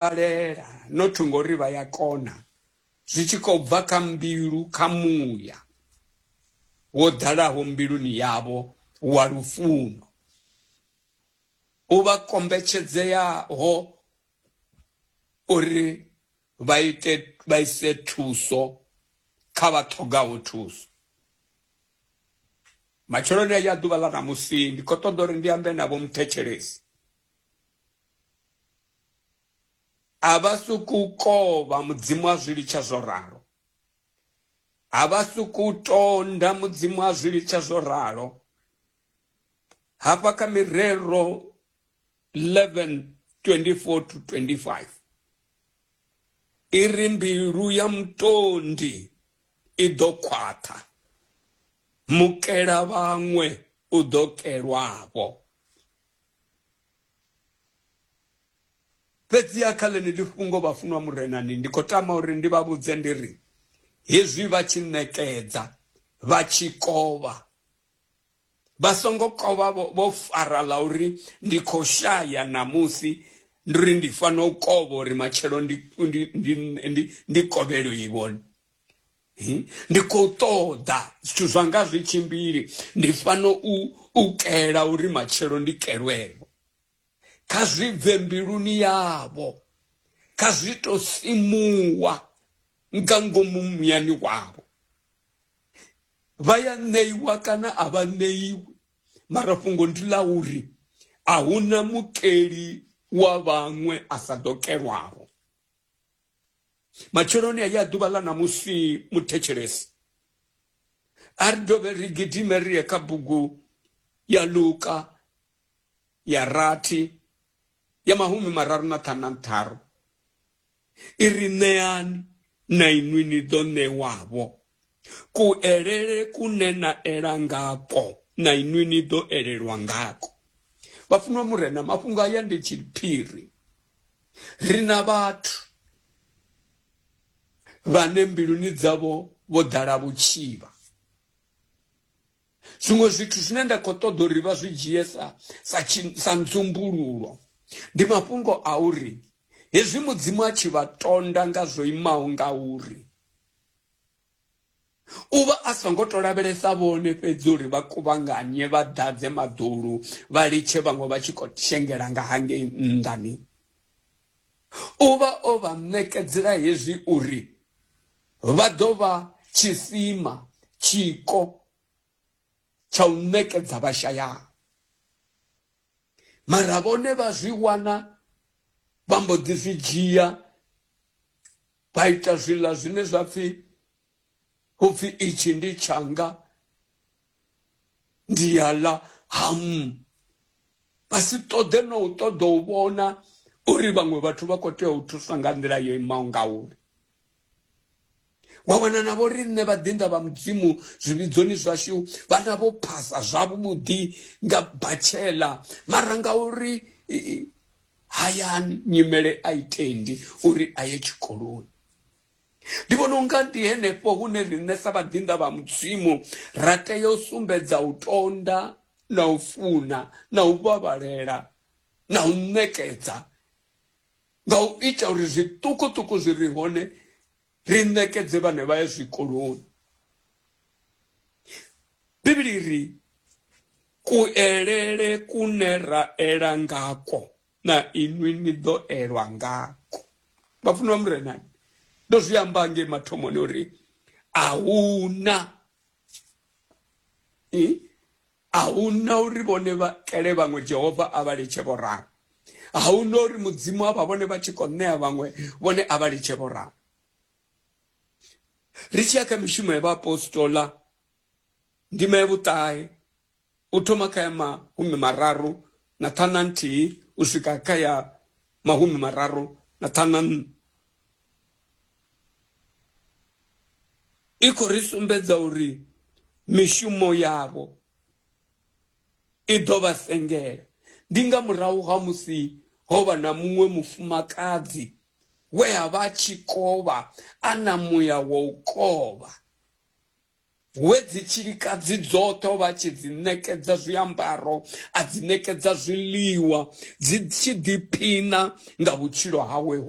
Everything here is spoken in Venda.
balela not ngori vha ya kona zwi tshi khou bva kha mbilu kha muya wo ḓalaho mbiluni yavho wa lufuno u vha kombetshedzeaho uri vha ite vha ise thuso kha vha ṱhogaho thuso matsheloni ya ḓuvha ḽa ṋamusi ndi khou ṱoḓa uri ndi ambe navho muthetshelesi A vha sokou kovha Mudzimu a zwi litsha zwo ralo. A vha sokou tonda Mudzimu a zwi litsha zwo ralo. Hafha kha mirero 11 24 to 25 i ri mbilu ya mutondi i ḓo khwaṱha, mukela vhaṅwe u ḓo kelwavho. Fhedziha kha ḽeneḽi fhungo, vhafunwa Murenani, ndi khou tama uri ndi vha vhudze ndi ri, Hezwi vha tshi ṋekedza, vha tshi kovha, vha songo kovha vho vho fara ḽa uri ndi khou shaya ṋamusi, ndi uri ndi fanela u kovha uri matshelo ndi, ndi, ndi, ndi, ndi kovhelwe-vho. Hmm? ndi khou ṱoḓa zwithu zwanga zwi tshimbili ndi fano u u kela uri matshelo ndi kelwevho kha zwi bve mbiluni yavho kha zwi to simuwa nga ngomu muyani wavho vha ya ṋeiwa kana a vha ṋeiwi mara fhungo ndi ḽa uri a hu na mukeli wa vhaṅwe a sa ḓo kelwavho matsheloni a ya ḓuvha ḽa ṋamusi muthetshelesi a ri dovhe ri gidime ri ye kha bugu ya luka ya rathi ya mahumi mararu na ṱhanu na ntharu i ri ṋeani na inwi ni ḓo ṋewavho kuelele kune na ela ngakwo na inwi ni ḓo elelwa ngakwo. Vhafunwa Murena, mafhungo aya ndi tshiphiri. Ri na vhathu vhane mbiluni dzavho vho ḓala vhutshivha zwiṅwe zwithu zwine nda khou ṱoḓa uri vha zwi dzhie sa sa sa nzumbululo ndi mafhungo a uri hezwi mudzimu a tshi vha tonda nga zwo imaho nga uri U vha a songo tou lavhelesa vhone fhedzi uri vha kuvhanganye vha ḓadze maḓulu vha litshe vhaṅwe vha tshi khou shengela nga hangei nnḓani. U vha o vha ṋekedzela hezwi uri vha ḓo vha tshisima, tshiko, tsha u ṋekedza vhashayaho. Mara vhone vha zwi wana vha mbo ḓi zwi dzhia vha ita zwiḽa zwine zwa pfhi upfhi itshi ndi tshanga ndi ya ḽa hamu vha si ṱoḓe no u ṱoḓa u vhona uri vhaṅwe vhathu vha khou tea u thuswa nga nḓila yo imaho ngauri wa wana na vho riṋe vhaḓinḓa vha mudzimu zwivhidzoni zwashu vha na vho phasa zwavhuḓi nga batshela mara ngauri hayani nyimele a i tendi uri a ye tshikoloni ndi vhona unga ndi henefho hune riṋe sa vhaḓinḓa vha mudzimu ra tea u sumbedza u tonda na u funa na u vhavhalela na u ṋekedza nga u ita uri zwiṱukuṱuku zwi re hone ri ṋekedze vhane vha ya zwikoloni bivhili ri kuelele kune ra ela ngako na inwi ni ḓo elwa ngako vhafunwa murenani ndo zwi amba nge mathomoni uri a huna A hu na uri vhone vha kele vhaṅwe Jehova a vha litshe vho ralo. A hu na uri Mudzimu a vha vhone vha tshi khou ṋea vhaṅwe vhone a vha litshe vho ralo. Ri tshi ya kha mishumo ya vhaapostola ndima ya vhuṱahe u thoma kha ya mahumi mararu na ṱhana nthihi u swika kha ya mahumi mararu na ṱhana nṋa i khou ri sumbedza uri mishumo yavho i ḓo vha sengela ndi nga murahu ha musi ho vha na muṅwe mufumakadzi we a vha tshi kovha a na muya wa u kovha we dzi tshilikadzi dzoṱhe o vha tshi dzi ṋekedza zwiambaro a dzi ṋekedza zwiḽiwa dzi tshi ḓiphina nga vhutshilo hawe ho